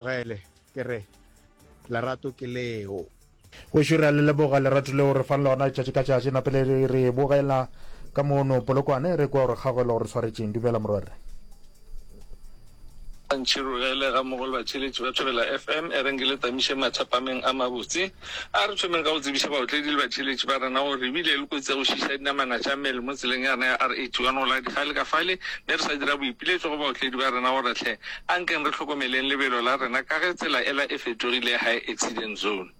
Gele, ke re, Lerato ke leo. Gešo re a le leboga lerato leo re fang lona letšatši ka tšatši. Na pele re re bogela ka mono Polokwane, re kwa gore kgagwelo gore tshwaretšeng. Dumela morwerre. Gantši Rurele ga Mogolwatheletši ba Thobela FM e reng ke le tamiše mathapameng a mabotse. A re thomeng ka go tsebiša baotledi le batheeletši ba rena gore re bile le kotsi ya go šiiša dinamana tša mmele mo tseleng ya rena ya R81 go la Dikgale ka fale mme re sa dira boipiletšo go baotledi ba rena gore hle a nkeng re hlokomeleng lebelo la rena ka ge tsela ela e fetogile high accident zone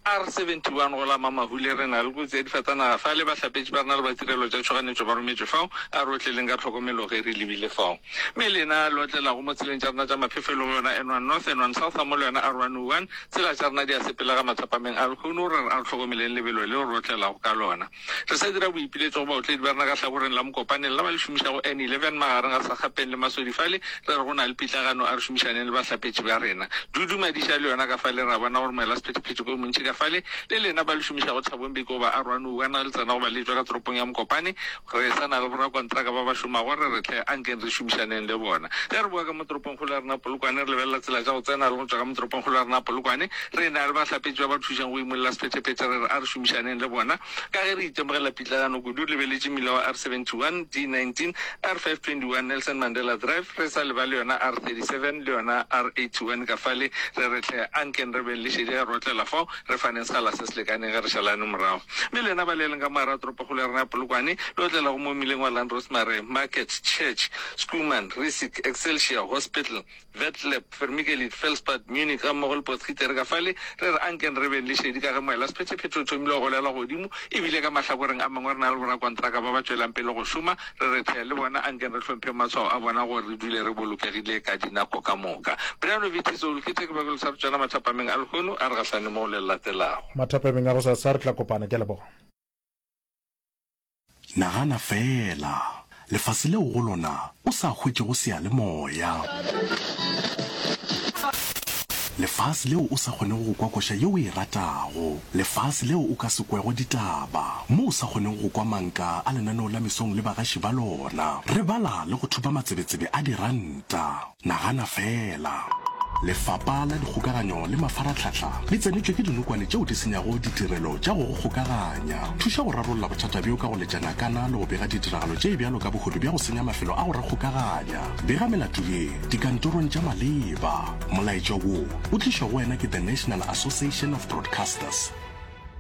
R71 go la Mamahule re na le kotsi ya difatanaga fale bahlapetši ba rena le ba tirelo tša tšhoganetšo ba rometšwe fao a re otleleng ka tlhokomelo ge re lebile fao mme lena le otlelago mo tseleng tša rena tša maphefo e lego yona N1 North N1 South ga mo le yona R101 Tsela tša rena di a sepelega matswapameng a lehono gore re hlokomeleng lebelo leo re otlelago ka lona. Re sa dira boipiletšo go baotledi ba rena ka hlakoreng la mokopaneng la ba le šomišago N11 magareng ga Sakgapeng le Masodi fale re re go na le pitlagano a re šomišaneng le bahlapetši ba rena. Dudu Madiša le yona ka fale re a bona gore moelasephethephethe ke o montši ka fale le lena ba le šomišago Thabong Bikoba a Rwanoua na le tsena go ba le etšwa ka toropong ya Mokopane Re sa na le borakontraka ba ba šomago, re re hle, ankeng re šomišaneng le bona. Ge re bowa ka mo toropongkgolo ya rena Polokwane, re lebelela tsela tša go tsena le go tšwa ka mo toropongkgolo ya rena Polokwane. Re na le bahlapetši ba ba thušang go imolola sephetephete, re re a re šomišaneng le bona. Ka ge re itemogela pitlaganyo kudu, lebeletše mmila wa R71, D19, R521, Nelson Mandela Drive, re sa lebale yona R37 le yona R81 ka fale, re re hle, ankeng re beng le šedi ge re otlela fao. Re faneng sekgala se se lekaneng ge re šalane morago. Mme lena ba le leng ka mo gare ga toropokgolo ya rena ya Polokwane, le otlelago mo mmileng wa Land Rosemary, Market, Church, Schoeman, Riesick, Excelsior, Hospital, Vetlab, Vermikelid, Felspad, Munich gammogo le Potgieter ka fale, re re a nkeng re beng le šedi ka ge moelasephetephete o thomile go golelwa godimo e bile ka mahlakoreng a mangwe re na le borakontraka ba ba tšwelang pele go šoma. re re thea le bona, a nke re hlomphe maswao a bona gore re dule re bolokegile ka dinako ka moka. Brian o bethitse o loketše ke bakolo sa botšana mathapameng a lehono a re gahlane moo le latelago. Mathapameng a gosasa re tla kopana. Ke a leboga. Nagana feela, lefase leo go lona o sa hwetšego seyalemoya. Lefase leo o sa kgonego go kwa koša yeo o e ratago. Lefase leo o ka se kwego ditaba, mo o sa kgoneng go kwa manka a lenaneo la mesong le bagaši ba lona. Re bala le go thupa matsebetsebe a diranta. Nagana fela! Lefapa la Dikgokaganyo le Mafaratlhatlha le tsenetšwe ke dinokwane tšeo di senyago ditirelo tša go go kgokaganya. Thuša go rarolla bothata bjo ka go letša nakana le go bega ditiragalo tše bjalo ka bohodu bja go senya mafelo a go re kgokaganya. Bega melato ye dikantorong tša maleba. Molaetša wo o tlišwa go wena ke The National Association of Broadcasters.